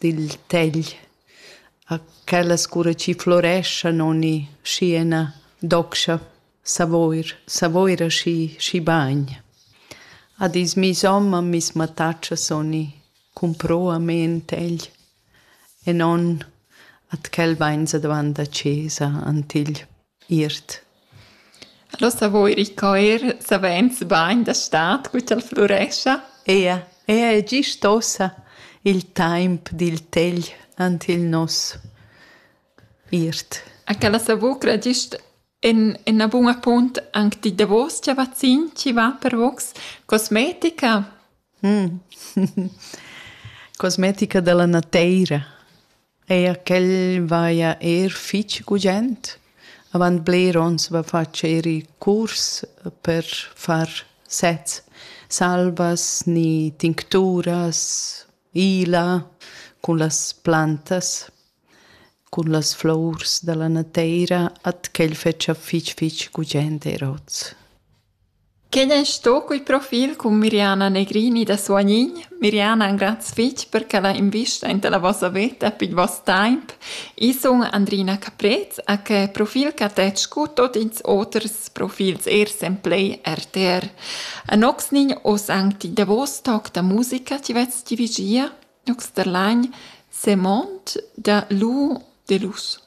dil tegl a quellas cura chi floreschan ogni schi ena docscha Savoir, Savoir aschi schi bagn. A dis miss homma miss mattatschas ogni cumproamein tegl e non at quel vainsa davant a chesa ant igl. Iert. Los davo ir in coer savains bain da stad cu ch'el flurescha. Ea, ea è gist ossa il taimp dil tegl ant il nos. Iert. A quella savucra gist en ena buna punt anc di davos cha vazzin chi va per vogs cosmetica. Cosmetica da la nateira. Eir ch'el vaja eir fich gugent. Avant bler ons va fatsch eir i curs per far sets, salvas ni tincturas, ila cun las plantas, cun las flours da la nateira, at ch'el fetscha fich fich gugent eir hoz. Quei ei sto quei profil cun Miriana Negrini da Suagnin. Miriana, graz fetg per ch'ella investa enta la vossa veta pil vos temps. Io sun Andrina Caprez ha que profil ch'ha tet scu tot ils oters profils eir sen play RTR. Anoxnin hoz anc ti davos toc da musica chi vets dirigia, Nox der Lain, Semond da Lou Delous.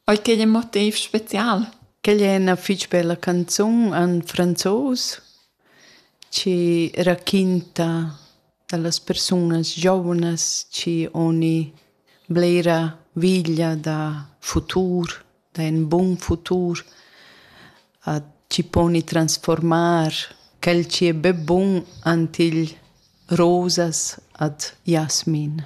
Ei ch'ei in motiv special. Quel è ina fitg bella canzun en franzos che raquinta dallas persunas giovnas che oni blera veglia da futur, da in bun futur, a chi poni transformar quel chi è be bun ant igl rosas ad jasmin.